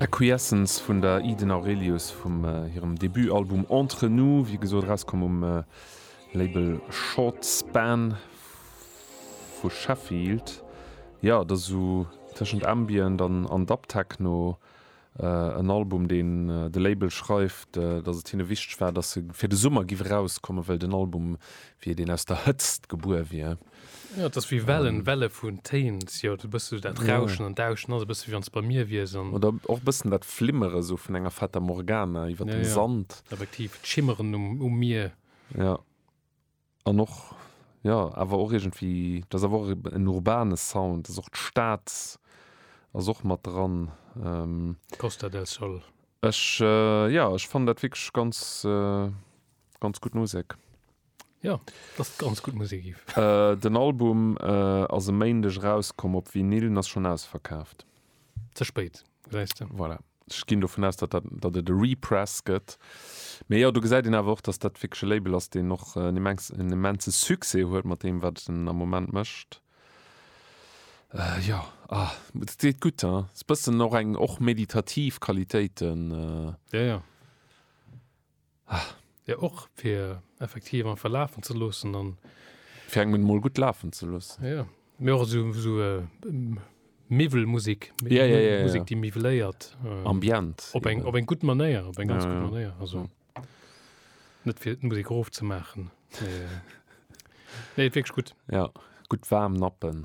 Acquiescence vun der Eden Aurelius vum hirem Debutalbum Entre nous, wéi gesot erauskomm um Label Short Span vu Sheffield. Jo, et ass esou tëschent Ambient an Dub-Techno, En Album, deen de Label schreift, datt et hinne wichteg war, datt e fir de Summer giff erauskommen, well den Album wéi deen aus der Hëtzt gebuer wier. Jo, et ass wéi Wellen, Welle vun Téin. Et ass jo e bësse sou dat Rauschen an Dauschen ass e bësse wéi wann s de bei mir wiers. Oder och e bëssen dat Flimmere sou vun enger Fata Morgana iwwer dem Sand. Effektiv, d'Schimmeren um Mier. Jo. An och, jo, awer och iergendwéi, dat ass awer och en urbane Sound, dat ass och d'Stad ass och mat dran. Costa del Sol. Ech, jo, ech fannen dat wierklech ganz, ganz gutt Musek. Jo, dass et ganz gutt Musek gif. Den Album ass e Méindeg erauskomm op Vinyl an ass schonn ausverkaaft. Ze spéit, gesäis de. Voilà. Ech ginn dovun aus, datt dat, datt et e Repress gëtt. Mee jo, do gesäit een awer och, datt dat wierklech e Label ass, deen och en immense, en immense Succès huet mat deem, wat en am Moment mécht. Jo, ah, et deet gutt, hein. Ass e bëssen och eng, och meditativ Qualitéiten. Jo, jo. Ah, jo och fir effektiv einfach lafen ze loossen an. Fir eng Minutt mol gutt lafen ze loossen. Jo, mee och esou esou Miwwelmusik, Musik, déi miwweléiert. Ambient. Op eng op eng gutt Manéier, op eng ganz gutt Manéier. Also net fir d'Musik erof ze maachen. Nee, et wierkt gutt. Jo, gutt waarm Nappen.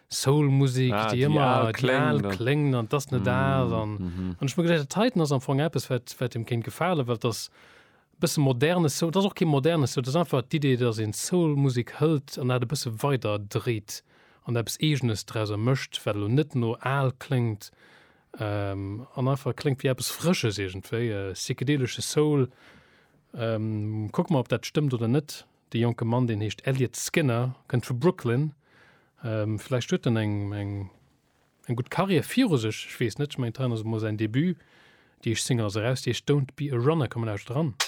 Soul-Musik, déi ëmmer déi al kléngt an et ass net al. An ech hu mir geduecht, dat heiten ass am Fong eppes, wat deem kéint gefalen, well et ass e bësse moderne Soul. Et ass och kee moderne Soul, et ass einfach d'Idee, datt een d'Soul-Musek hëlt an dat e bësse weider dréit an eppes Eegenes drauser mécht, wat elo net no al kléngt an einfach kléngt wéi eppes Frësches iergendwéi, psychedelesche Soul. Kucke mer, ob dat stëmmt oder net. De jonke Mann, deen heescht Elliot Skinner, kënnt vu Brooklyn. Vläicht huet en eng, eng, eng gutt Carrière viru sech, ech weess net. Ech mengen, d'Reine ass emol säin Debut. Déi éischt Single ass eraus, déi heescht Don't Be A Runner. Komm, mir lauschteren eran.